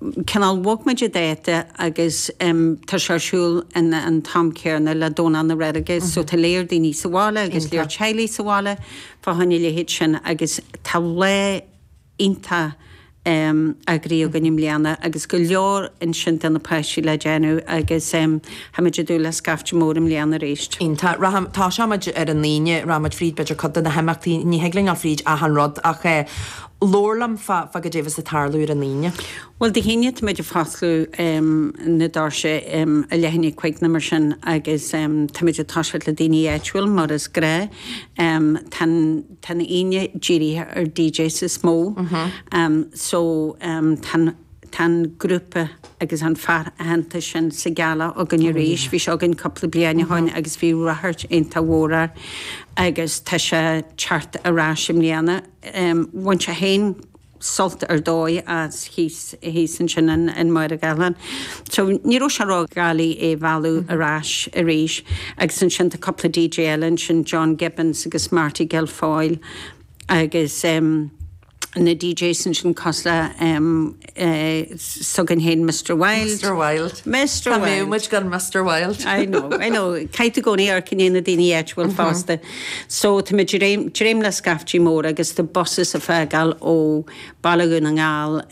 cineál bhog muid a date agus tá sé ar siúl in an am céanna le Domhnach na Reilige so tá lear daoine sa bhaile agus lear teaghlaigh sa bhaile fá choinne a leithéid sin agus tá lá iontach eagraithe againn i mbliana agus go leor ansin do na páistí le déanamh agus tá muid ag dúil le scaifte mór i mbliana arís. Iontach. Rachaim, tosóimid ar an Aoine, rachaimid fríd b'fhéidir cuid de na himeachtaí, ní thig linn dul fríd achan rud ach eh, labhair liom fá caidé a bheas ag tarlú ar an Aoine. Bhuel, Dé hAoine táimid ag fosclú na doirse a leithéidí cúig nó mar sin agus táimid ag toiseacht le daoine áitiúil mar is gnách. Tá an Aoine dírithe ar DJs is mó so tá an grúpa agus an fear aitheanta sin Sigala againn arís. Bhí sé againn cúpla bliain ó shin agus bhí ráchairt iontach mhór air agus tá sé teacht ar ais i mbliana. Bhain sé féin sult ar dóigh as thíos ansin in Machaire Gathlán. So ní raibh sé ródhoiligh é a mhealladh ar ais arís agus ansin tá cúpla DJ eile ansin, John Gibbons agus Marty Guilfoyle agus na DJs ansin cosúil le. s'againn féin Mister Wild. Mister Wild. Mister Wild. Cá mbeadh muid gan Mister Wild? I know, I know. Caithfidh tú i gcónaí amharc i ndiaidh na daoine áitiúil fosta. So tá muid ag dréim, dréim le scaifte mór agus tá buses ag fágáil ó Bhaile Dhún na nGall,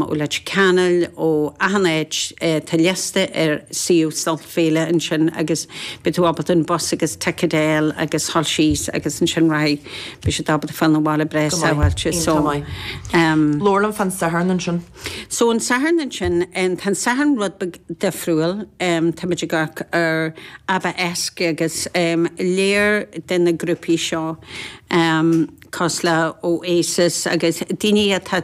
ó Leitir Ceanainn, ó achan áit. Tá liosta ar suíomh Sult Féile ansin agus beidh tú ábalta an bus agus ticead a fháil agus a ghabháil síos agus ansin rachaidh. Beidh siad ábalta fáil 'na bhaile breá Go maith. sábháilte. Aon So, t-am maith. em. Labhair liom fán Satharn ansin. So an Satharn ansin, em, tá an Satharn rud beag difriúil. Em, táimid ag amharc ar Abbaesque agus, em, lear de na grúpaí seo, em, cosúil le Oasis agus daoine atá.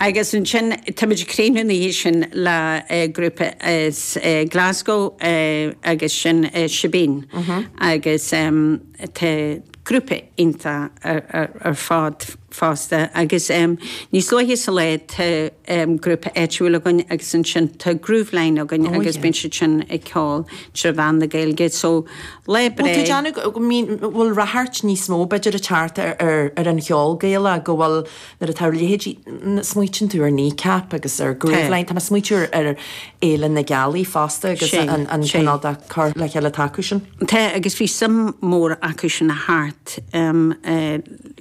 Agus ansin tá muid ag críochnú na hoíche sin le grúpa as Glasgow agus sin Shebeen agus tá siad grúpa iontach ar fad fosta agus níos luaithe sa lá tá grúpa áitiúil againn agus ansin tá Grooveline againn agus bíonn siad sin ag ceol trí mheán na Gaeilge so lá breá. Bhuel tá mé ag déanamh go mbíonn, bhfuil ráchairt níos mó b'fhéidir ag teacht ar an cheol Gaelach go bhfuil, Nuair atá a leithéidí, smaoitíonn tú ar Kneecap agus ar Grooveline. Tá mé ag smaoitiú ar Fhéile na Gealaí fosta agus an cineál de cur le chéile atá acu sin. Tá agus bhí suim mór acu sin thart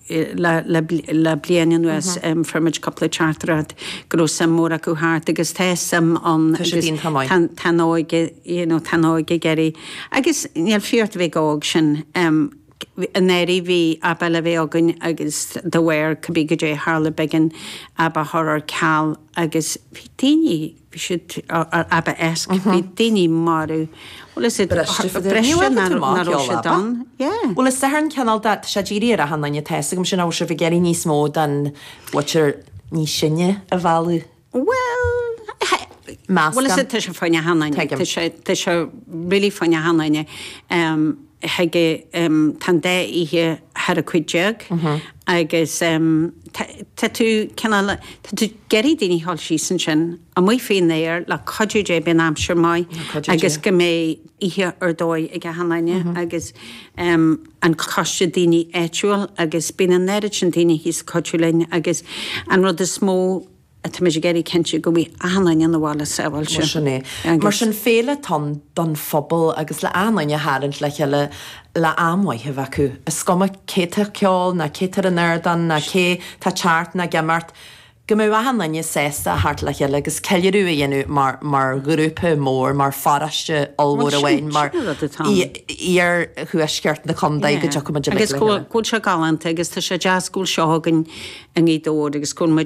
le bliain anuas. Fuair muid cúpla teachtaireacht go raibh suim mór acu theacht agus tá suim ann agus tá an óige, you know, tá an óige ag éirí. Agus níl fiacha ort a bheith óg ansin. An áirithe bhí ábalta a bheith againn agus do bhféar cibé goidé tharla b'éigean é a chur ar ceal agus bhí daoine, bhí siad ab a éasc, bhí daoine marbh. Bhuel is é, breise ná raibh siad ann, yeah. Bhuel is saothar cineál de, tá sé ag iarraidh ar achan duine atá fhios agam sin, an bhfuil sibh ag iarraidh níos mó den bhunadh níos sine a mhealladh. Bhuel, measc an. Tá sé fóirsteanach do achan duine. Tuigim. Tá sé really fóirsteanach do achan duine. Tá an dá oíche thar ocht déag agus tá tú cineál, tá tú ag iarraidh daoine a ghoil síos ansin amuigh faoin aer le cuidiú Dé beidh an aimsir maith agus go mbeidh oíche ar dóigh ag achan duine agus an coiste daoine áitiúil agus bíonn an oiread sin daoine thíos ag cuidiú linn agus an rud is mó atáimid ag iarraidh cinntiú go mbeidh achan duine an bhaile sábháilte agus. Sin féile atá ann don phobal agus le achan duine a tharraingt le chéile le am mhaith a bheith acu. Is cuma cé tá ag ceol ná cé tá ar an ardán ná cé tá ag teacht ná ag imeacht, Go mbeadh achan duine sásta a theacht le chéile agus ceiliúradh a dhéanamh mar, mar ghrúpa mór, mar pharóiste ollmhór Bhuel, sin, amháin, mar sin an rud atá ann. iar-thuaisceart na contae, go Yeah. dtiocfaimid uilig Agus le go bhfuil, chéile. go bhfuil seo galánta agus tá sé deas go bhfuil seo againn i nGaoth Dobhair agus go bhfuil muid